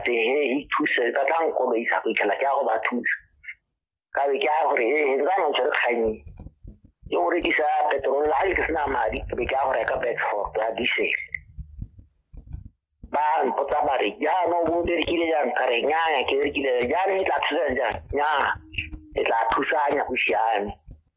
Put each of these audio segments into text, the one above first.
te he hi thuse ka tla nko ba isa go ikela ke go ba thuse ka be ke a gore he he ba no tsere kganyi ke gore ke sa petrol la ke sna madi ke be ke a gore ka Bedford ya diesel ba mpotsa ba re ya no bo dire kile ya nkare nya ya ke re kile ya ne tla thusa ja nya e tla thusa nya go siame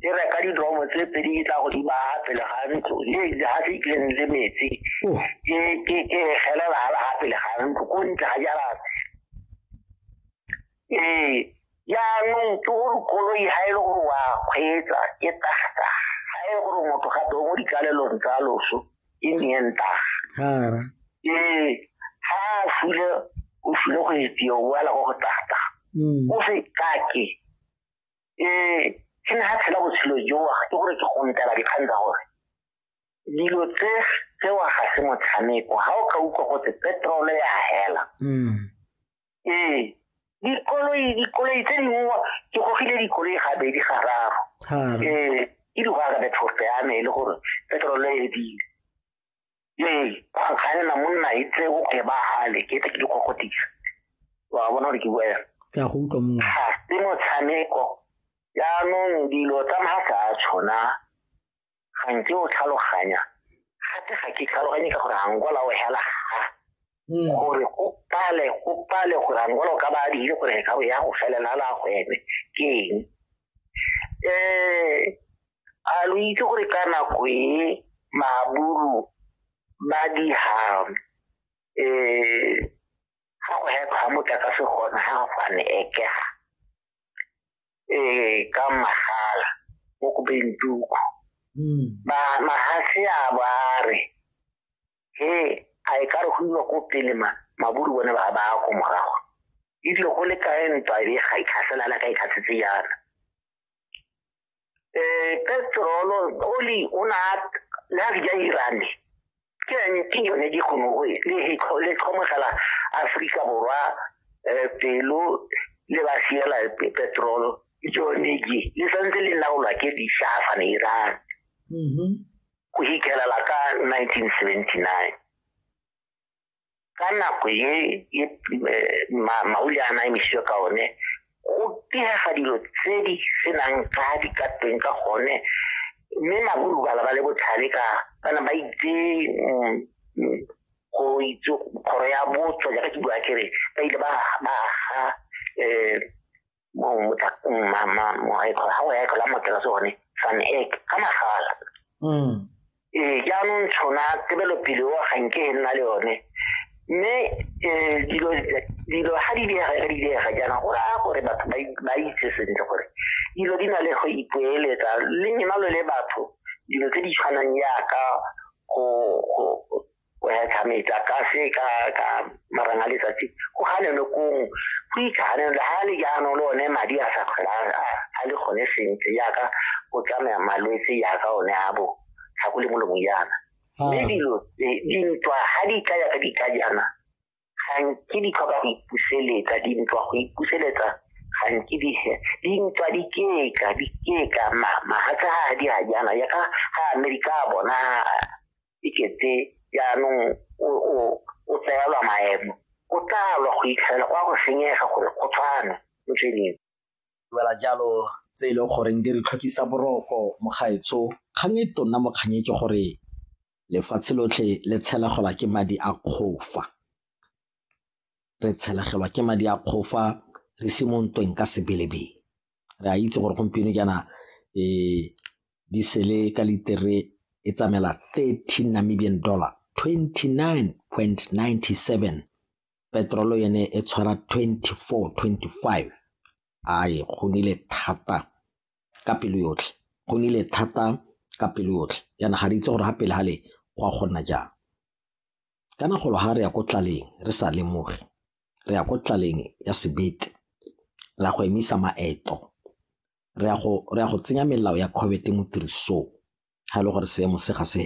e reka didromo tse pedi e tla go di baya pele ga ntlo le le ha se tleng le metsi Oh. ke ke ke gelela ha ha pele ga ntlo ko ntle ga jara eh ya no to kolo i ha ile gore wa kgwetsa ke tagta ha ile gore motho ga do mo dikalelong tsa loso e mienta Hara. eh ha fule o fule go itse o wala go tagta Mm. o se kake um ke ne ga tshela botshelo jowa ke gore ke gontela dikgang tsa gore dilo tse tsewa ga se motshameko ga o ka utlwa gotse petrole ya hela mm. ee dikoloi dikoloi tse dingwe ke gogile dikoloi gabedi gararo ee ke di go arabethofe ya me e le gore petrole e dile ee go kganela monna e tse o ke ba hale ke tle ke di kokotisa wa bona gore ke bua yana ke a go utlwa mongwe ga se motshameko jaanong dilo tsa maatla a tshona ga nke o tlhaloganya gape ga ke tlhaloganye ka gore ga nkola o hela ga mm. gore go pale go pale gore angolo ka ba dire gore ka ya go felela la gwebe ke eng um a lo itse gore ka nako e maburu ba diha um ga go hekgwa motlakase gona ga go fane ekega um ka magala mo kobeng tuku mm. ba magatse a ba re he a e ka re go iwa ko pele ma maburu bone ba ba ko morago e dilo go le kae ntwa e ga e tlhasela la ka e tlhasetse yana eh petrolo oli o na la ga e irane ke ne ke yone di go noe le he go le tlhomogela Afrika borwa eh pelo le ba siela petrolo jone ke le santse le laolwa ke di shafa ne irane mhm go hitlelela ka 1979 ka nako ye e, mauli a naemisiwe ka one go pihega dilo tse di senang ka di ka teng ka gone mme maburu bala ba le botlhale ka bana ba itse mm, mm, go itse kgoro ya botso jaaka ke bua kere ba ile ba aga um eh, gago ya ekela mokela sone fan ek ka magala mm. ee jaanong tshona tebelopele o ganke e nna le yone mme um dilo ga di diega ga di diega jaana go raya gore batho ba itse sentle gore dilo di na le go ipoeletsa le nyenalo le batho dilo tse di tshwanang yaka go go hetlha metsa ka se ka ka marang a letsatsi go ganeno kong go itlhaganelo le ga le jaanong le one madi a sa kgwela a le gone sentle yaka go tsamaya malwetse yaka one a bo tlhako le molomong yana mme dilo dintwa ga di tla yaka di tla jaana gantsi di tlhoka go ipuseletsa di ntswa go ipuseletsa gantsi di di ntswa di keka di keka ma ma ha tsa ha di ha jana ya ka ha amerika bona iketse ya no o o o tsela maemo o tla lo go itlhela kwa go senyega gore go tshwana mo tsweleng wela jalo tse e leng goreng di re tlhokisa boroko mogaetsho kgang e tonna mokganye ke gore lefatshe lotlhe le tshelegelwa ke madi a kgofa re tshelegelwa ke madi a kgofa re se mo ntweng ka sebelebele re a itse gore gompieno jaana um di sele ka litere e tsamaela thirty namibian dollar twenty nine point ninety seven petrolo yone e tshwara twenty four twenty five a e gonile thata ka pelo yotlhe, go nnile thata ka pelo yotlhe, jaana ga re itse gore ga pele ga le go a go nna jang. Kana golo ga re ya ko tlaleng re sa lemoge, re ya ko tlaleng ya sebete, re ya go emisa maeto, re ya go tsenya melao ya COVID mo tirisong ga e le gore seemo se ga se